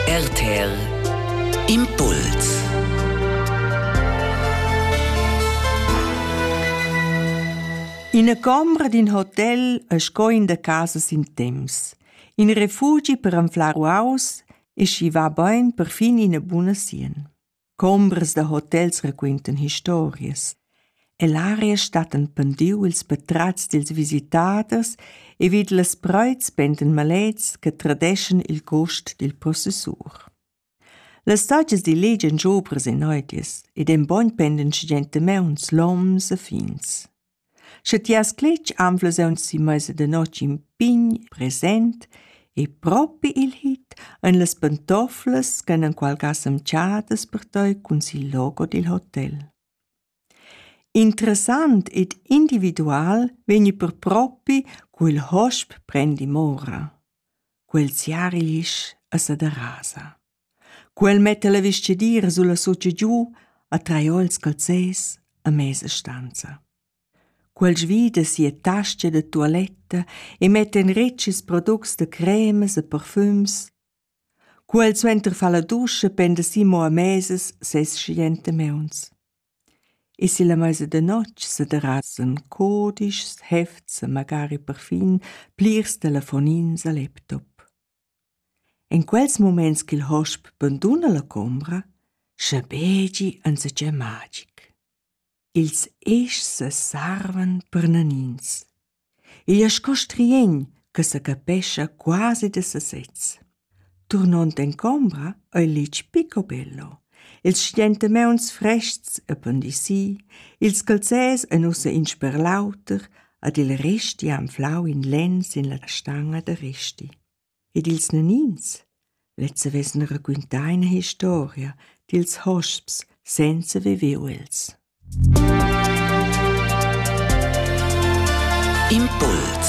RTL Impuls Ina combra d'in hotel e sco in da casas in temps. In refugi per anflar uaus e schi va bain per fin ina buna sien. Combras da hotels raquintan historias. E l'aria stattan pendiu ils patratgs dils visitaders e vid las preits pendan malets che tradeschan il gust dil possessur. Las saggias diligian giobras e neutias ed en bogn pendan gigentemauns loms e fins. Sche ti has cletg anflas aunzi meisa da notg in pign present e propi il hit ein las pantoflas ch'han enqualga semtschadas per tei cun sil logo dil hotel. Interessant ed individual vegni per propi quel hosp prendi mora. Quel siarilisch a sa derasa. Quel metta la vestgadira sulla sotscha giu, a traions calzers e mesa stanza. Quel svida sia tascha da tualetta e metta in retgs products da cremas e parfums. Quel suenter fa la duscha penda si mo a mesas ses schiente meuns. E si la mesa da notg se derasen codischs, hefts e magari parfin plirs telefonins a laptop. En quels muments ch'il hosp banduna la combra, schabegi enzatgei magic. Ils eschs sesarvan per nanins. Igl è sco striegn che sa capescha quasi da sasez. Turnond en combra ei litg pico bello. Ils stentemeuns frestgs e pandisii, ils calzès ein ussa in sper l'auter, ed il Resti ha anflau in lenn sin la stanga da Resti. Ed ils nanins? Lezza vessen raquintau ina historia dils hosps senza viver els. Impuls